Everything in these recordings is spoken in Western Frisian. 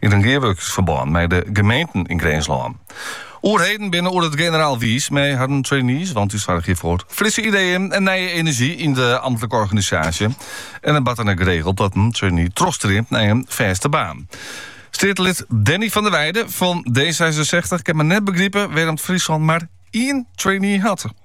yn in gearwurkingsferbân mei de gemeenten yn Grinslân. Oerheden binne oer it generaal wiis mei harren trainees, want dy soargje foar frisse ideeën en nije enerzjy yn de amtlike organisaasje. En it bart dan ek geregeld dat in trainee trochstreamt nei in fêste baan. Steatelid Danny van der Weijde fan D66 kin mar net begripe wêrom't Fryslân mar ien trainee hat.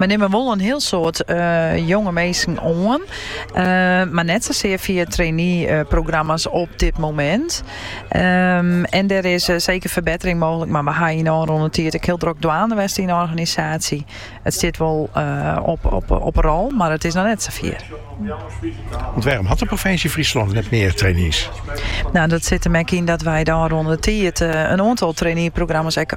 Wy nimme wol in hiel soad jonge minsken oan, mar net sasear fia traineeprogramma's op dit momint. En der is seker ferbettering mooglik, mar we ha yn de ôfrûne tiid ek hiel drok dwaande west yn de organisaasje. It stiet wol op 'e rol, mar it is noch net safier. Dat sit him ek yn dat wy de ôfrûne tiid in oantal traineeprogramma's ek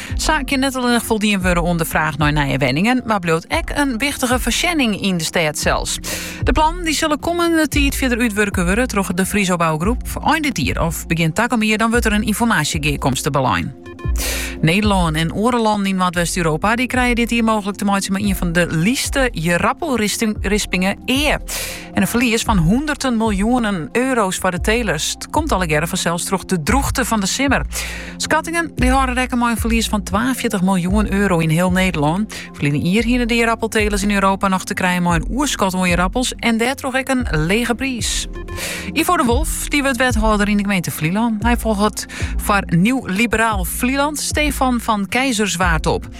Sa kin net allinnich foldien wurde oan de fraach nei nije wenningen, mar bliuwt ek in wichtige foarsjenning yn de stêd sels. De plannen dy sille kommende tiid fierder útwurke wurde troch de Friso Bouwgroep. Ein dit jier of begjin takom jier dan wurdt der in ynformaasjegearkomste belein. Nederlân en oare lannen yn Noardwest-Europa dy krije dit jier mooglik te meitsjen mei ien fan de lytste jerappelrispingen ea. En in ferlies fan hûnderten miljoenen euro's foar de telers. Dat komt allegearre fansels troch de droegte fan de simmer. Skattingen dy hâlde rekken mei in ferlies fan 42 miljoen euro yn hiel Nederlân. Ferline jier hienen de jerappeltelers yn Europa noch te krijen mei in oerskot oan jerappels en dêrtroch ek in lege priis. Ivo de Wolf, dy wurdt wethâlder yn de gemeente Flylân. Hy folget foar Nieuw Liberaal Vlieland Stefan van Keizerswaard op.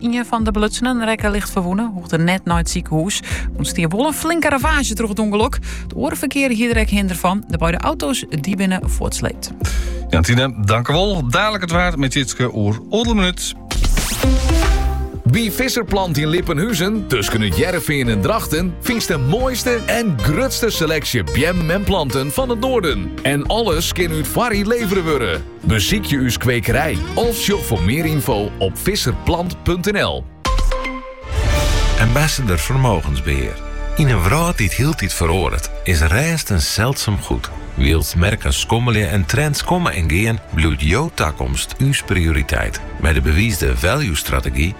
Ien fan de belutsenen rekke licht ferwûne, hoegde net nei it sikehûs. Ûntstie wol in flinke ravaazje troch it ûngelok. It oare ferkear hie der ek hinder fan. De beide auto's dy binne fuortsleept. Jantine, tankewol. Dalik it waar mei Jitske oer oardel minút. By Visserplant yn Lippenhuzen, tusken It Hearrenfean en Drachten, fynst de moaiste en grutste seleksje beammen en planten fan it noarden. En alles kin út foarrie levere wurde. Besykje ús kwekerij of sjoch foar mear ynfo op visserplant.nl. Ambassador Vermogensbeheer. Yn in wrâld dy't hieltyd feroaret, is rêst in seldsum goed. Wylst merken skommelje en trends komme en gean, bliuwt jo takomst ús prioriteit. Mei de bewiisde value-strategy